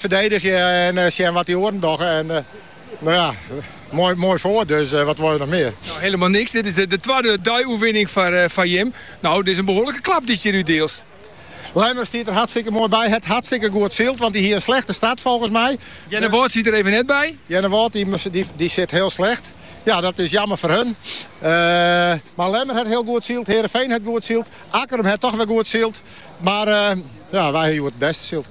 Ferdedigje en sjen wat dy oaren dogge. En no ja, moai, moai foar, dus wat wol je noch mear? No, hielendal niks. Dit is de, de twadde deioerwinning foar, foar jim. No, dit is in behoarlike klap dy't hjir útdielst. Lemmer stiet der hartstikke moai by. Het hartstikke goed syld, want dy hie in slechte start folgens my. Earnewâld stiet der even net by. Earnewâld dy, dy, dy sit hiel slecht. Ja, dat is jammer foar hun. Eh, mar Lemmer het hiel goed syld. Hearrenfean het goed syld. Akkrum het toch wer goed syld. Mar eh, ja, wy hawwe it bêste syld.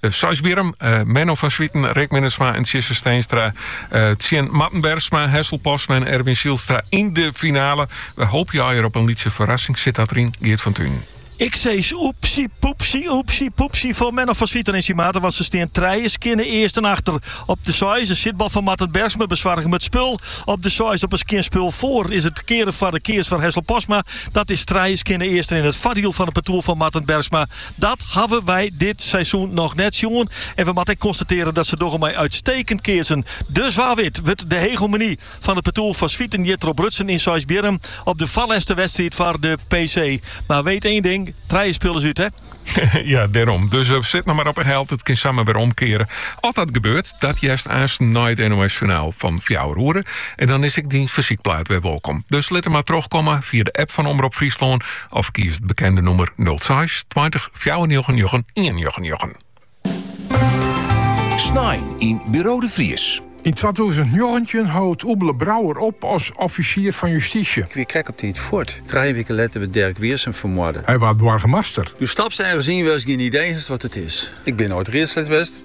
Seisbierrum, Menno van Zwieten, Rick Minnesma en Tjisse Steenstra tsjin Marten Bergsma, Hessel Postma en Erwin Zijlstra yn de finale. Wy hoopje dit jier op in lytse ferrassing, sit dat der yn, Geert van Tuinen. Ik sis oepsy poepsy, oepsy poepsy foar Menno van Zwieten en syn maten, want se stean trije skjinne earsten achter op de seis. In sitbal fan Marten Bergsma besoarge him it spul op de seis. Op in skjin spul foar is it kearen foar de keats foar Hessel Postma. Dat is trije skjinne earsten yn it foardiel fan it partoer fan Marten Bergsma. Dat hawwe wy dit seizoen noch net sjoen. En we moatte ek konstatearje dat se dogge mei uitstekend keatsen. Dus wa wit wurdt de hegemony fan it partoer Van Zwieten hjir trochbrutsen yn Seisbierrum op de foarlêste wedstriid foar de PC. Mar weet één ding, trije spul is út hè. ja, dêrom. Dus eh, sit noch mar op 'e helte. It kin samar wer omkeare. Oft dat gebeurt, dat hearst aanst nei it NOS Journaal fan fjouwer oeren. En dan is ek dyn fersykplaat wer wolkom. Dus lit it mar trochkomme fia de app fan Omrop Fryslân Of kies it bekende nûmer 06 20 499 199. Snein yn Buro de Vries. Yn 2019 hâldt Oebele Brouwer op as offisier fan justysje. Ik wie krekt op tiid fuort. Trije wiken letter wurdt Derk Wiersum fermoarde. Hy waard boargemaster. Do stapst ergens yn wêr'st gjin idee hast wat it is. Ik bin noait riedslid west.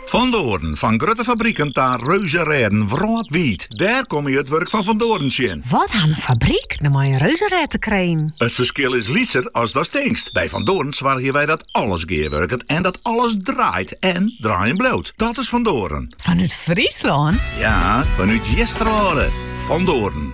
Van Doorn, fan grutte fabriken ta reuzenrêden wrâldwiid. Dêr komme je it wurk fan Van Doorn tsjin. Wat hat in fabryk no mei in reuzenrêd te krijen? It ferskil is lytser as datst tinkst. By Van Doorn soargje wy dat alles gearwurket en dat alles draait en draaien bliuwt. Dat is Van Doorn. Fanút Fryslân? Ja, fanút Easterwâlde. Van Doorn.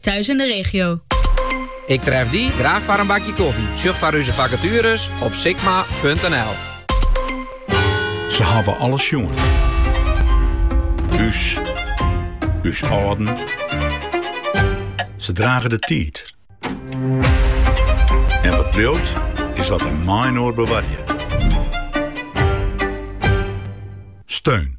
Thuis in de regio. Ik tref dy graag foar in bakje koffie. Sjoch foar úze vacatures op sigma.nl. Se hawwe alles sjoen. Us, us âlden. Se drage de tiid. En wat bliuwt, is wat wy mei-inoar bewarje. Steun.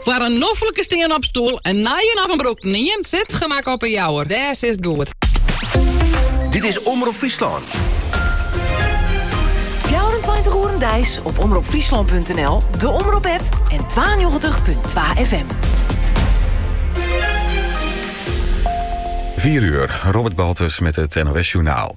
Foar in noflike stean-op stoel, in nije of in brûkte ien, Zitgemak op 'e Jouwer. Dêr sitst goed. Dit is Omrop Fryslân. 24 oeren deis op omropfryslan.nl, de Omrop app en 92.2 FM. 4 uur, Robert Baltus met het NOS Journaal.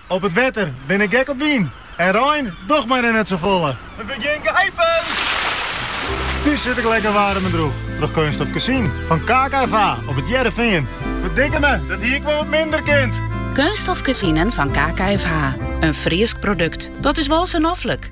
Op it wetter bin ik gek op wyn. En rein docht my net sa folle. 't Begjint te jitten! Thús sit ik lekker waarm en drûch troch keunststof kezinen fan KKFH op It Hearrenfean. Ferdikke me, dat hie ek wol wat minder kind! Keunststof kezinen fan KKFH. In Frysk produkt, dat is wol sa noflik!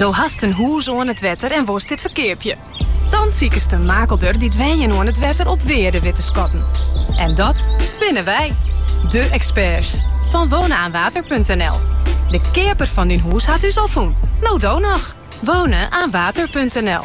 Do hast in hûs oan it wetter en wolst dit ferkeapje. Dan sikest in makelder dy't wenjen oan it wetter op wearde wit te skatten. En dat binne wy, de eksperts fan Wonenaanwater.nl. De keaper fan dyn hûs hat ús al fûn. No do noch! Wonenaanwater.nl.